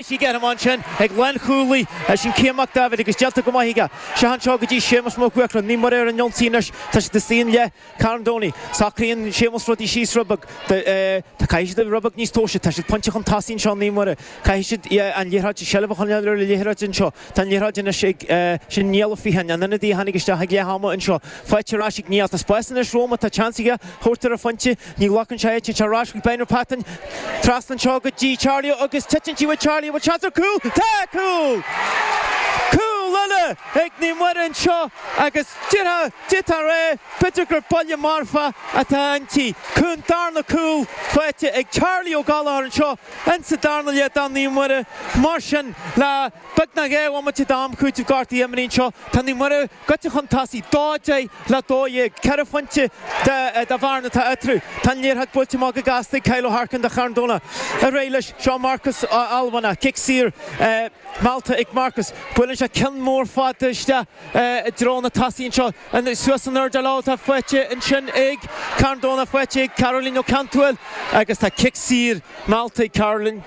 Tig orm ansin, ag lánchúlaí, sin Cian Mac Daibhéid agus déanta go maith aige. Seo anseo go dtí Séamus Mac Mhuircreáin. Naomh Muire ar an ionsaí anois, tá siad istigh i leath Charn Domhnaigh. Socraíonn Séamus rudaí síos rud beag, tá, caithfidh siad a bheith rud beag níos tomhaiste, tá siad pointe chun tosaigh anseo Naomh Muire, caithfidh siad an liathróid, seilbh a choinneáil ar an liathróid anseo. Tá an liathróid anois ag, sin Niall Ó Fiatháin, an ionadaí a tháinig isteach ag leath ama anseo, faighte ar ais ag Niall. Tá spás anois roimhe, tá seans aige, thabhairt ar an phointe, Ní ghlacann sé é, téann sé ar ais chuig Blenheim Patton. Trasna anseo go dtí Charlie agus titeann sí bhfaighidh Charlie, bhfuil seans ar chúl. Tá cúl! Cúl eile ag Naomh Muire anseo agus déantar é b'fhéidir gur buille marfa atá inti. An darna cúl faighte ag Charlie Ó Gallachóir anseo ins sa darna leath do Naomh Muire. Mar sin le beagnach dhá bhomaite d'am cúitimh gortaithe imeartha anseo tá Naomh Muire. gaibhte chun tosaigh, dó deich le dó dhéag, ceithre phointe de bhearna atá eatarthu. Tá an liathróid buailte amach go gasta ag Kyle O'Harkin do Charn Domhnach. Ar aghaidh leis, seo Marcus Ó hAlmhainneach, cic saor meallta ag Marcus, buaileann sé ceann mór fada isteach i dtreo na dtosaithe anseo. Suas san aer leo, tá sí faighte ansin ag Carn Domhnach, faighte ag Caroline Ó Ceantúil agus tá cic saor meallta ag Caroline.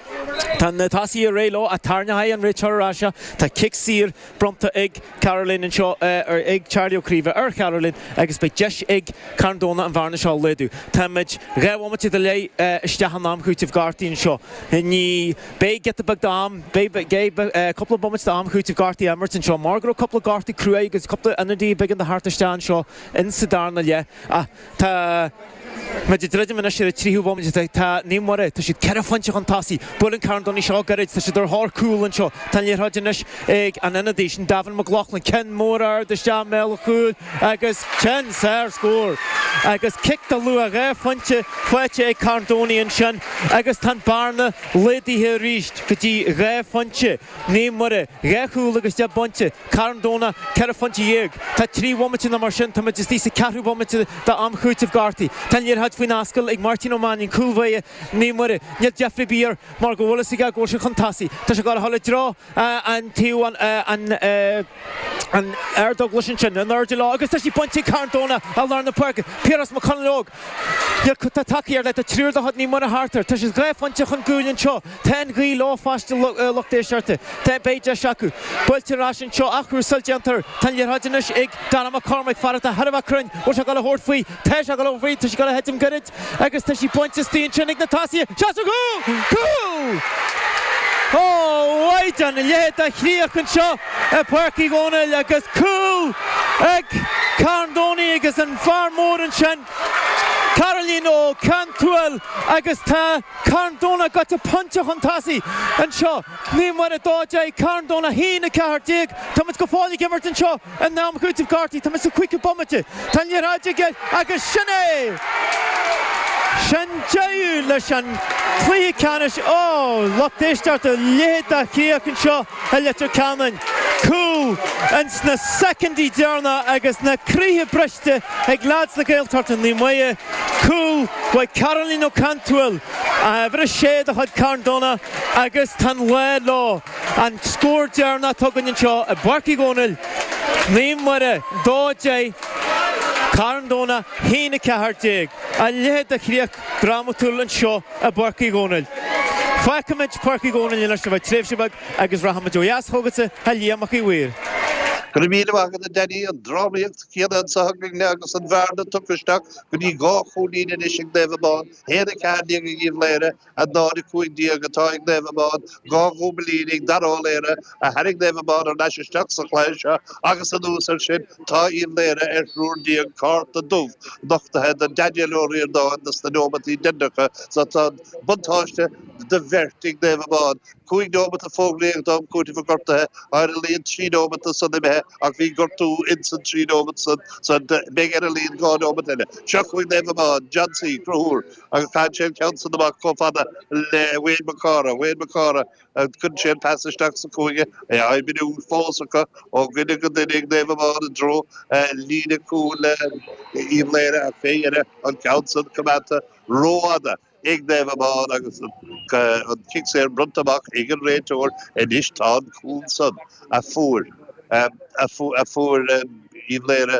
Tá na tosaithe réidh leo, ach tarraingeochaidh an réiteoir ar ais seo. Tá cic saor. bronnta ag Caroline anseo, ag Charlie Ó Craoibhe ar Charoline agus beidh deis ag Carn Domhnach an bhearna seo a laghdú. Táimid dhá bhomaite go leith isteach in am cúitimh gortaithe anseo. Anois beidh giota beag d'am, beidh cúpla bomaite d'am cúitimh gortaithe á imirt anseo mar go raibh cúpla gortú cruaidh agus cúpla ionadaí a b'éigean a thabhairt isteach anseo in sa darna leath. Tá muid ag druidim anois ar an tríú bomaite. Tá Naomh Muire, tá siad ceithre phointe chun tosaigh. Buaileann Carn Domhnach í seo gairid. Tá siad ar thóir cúl anseo. Tá an liathróid anois ag an ionadaí, sin Davin McLoughlin. Ceann mór ard isteach i mbéal an chúil agus téann sé ar scór! Agus cic de luach dhá phointe faighte ag Carn Domhnach ansin agus tá an bhearna laghdaithe arís go dtí dhá phointe. Naomh Muire, dhá chúl agus deich bpointe. Carn Domhnach, ceithre phointe dhéag. Tá trí bhomaite nó mar sin, táimid istigh sa ceathrú bomaite d'am cúitimh gortaithe. Tá an liathróid faoin ascaill ag Máirtín Ó Mainín, cúl báire Naomh Muire. Níl deifre ar bith air mar go bhfuil fhios aige go bhfuil sé chun tosaigh. Tá sé ag gabháil a dhul i dtreo an taobh an ardáin leis ansin, in airde leo agus tá sí bainte ag Carn Domhnach i lár na páirce. Piaras Mac Conaill óg. Iarr ctr tacaí ar leith tá triúr de chuid Naomh Muire thart air. Tá siad dhá phointe chun cúil anseo. Tá an ghaoth leo fosta, a lucht éisteachta. Tá, beidh deis acu. Buailtear ar ais anseo ach Ruasail déantar. Tá an liathróid anois ag Dara Mac Cormaic, fear atá thar a bheith cruinn. Bhfuil sé goil a thabhairt faoi? Tá sé goil a thabhairt faoi. Tá sí goil a thitim goirid agus tá sí bainte astoigh ansin ag na tosaithe. Seans ar chúl! Cúl! Ó a Mhaighdean, a leithéid de chríoch anseo. i bPáirc Uí Dhónaill agus cúl ag Carn Domhnach agus an fear mór ansin Caoimhín Ó Cantúil agus tá Carn Domhnach gaibhte pointe chun tosaigh anseo, Naomh Muire a dó deich, Carn Domhnach a haon a ceathair déag. Táimid go fóill ag imirt anseo in am cúitimh gortaithe, táimid sa chúigiú bomaite, tá an liathróid i gceist agus sin é! Sin deireadh leis an cluiche ceannais. Ó! Lucht éisteachta, a leithéid de chríoch anseo. i Leitir Ceanainn. Cúl ins na soicindí deireanacha agus na croíthe briste ag leads na Gaeltachta Naomh Muire. Cúl uaidh Caoimhín Ó Cantúil, uimhir a sé de chuid Carn Domhnach agus tá an lá leo. An scór deireanach atá againn anseo i bPáirc Uí Dhónaill, Naomh Muire 2, 10, Carn Domhnach 1, 14. A leithéid de chríoch. drámatúil anseo i bPáirc Uí Dhomhnaill. Fágfaimid Páirc Uí Dhomhnaill anois le haghaidh tréimhse beag agus rachaimid ó dheas chugatsa, a Liam Mac a' Mhaoir. Go raibh míle maith agat, a Danny. An drámaíocht chéanna anso againne agus an bhearna tugtha isteach go dtí dhá chúilín anois ag Naomh Abán, 1, 14 ag Uíbh Laoghaire, 0, 15 atá ag Naomh Abán, dhá chúilín ag Darragh Ó Laoghaire, a tharraing Naomh Abán ar ais isteach sa chluiche seo agus anuas air sin tá Uíbh Laoghaire ar thriúr déag cárta dubh nochtaithe do Daniel Ó Ríordáin dos na neomataí deireanacha so tá an buntáiste de bheirt ag Naomh Abán. Cúig neomata fógraíodh d'am cúitimh gortaithe ar a laghad, trí neomata san imithe ach bhí gortú ins an trí neomat san so beidh ar a laghad dhá neomat eile. Seo chugaibh Naomh Abán, John C, Cruthúr, agus caitheann sé an ceann san amach chomh fada le Wayne Mac Cárthaigh, Wayne Mac Cárthaigh, Cuireann sé an pas isteach sa chúinne, é á oibriú fós acu ó dhuine go duine ag Naomh Abán i dtreo líne cúil Uíbh Laoghaire ach fé dheireadh an ceann san coimeádta rófhada ag Naomh Abán agus an cic saor bronnta amach ag an réiteoir. Anois tá an cúl san a fuair Uíbh Laoghaire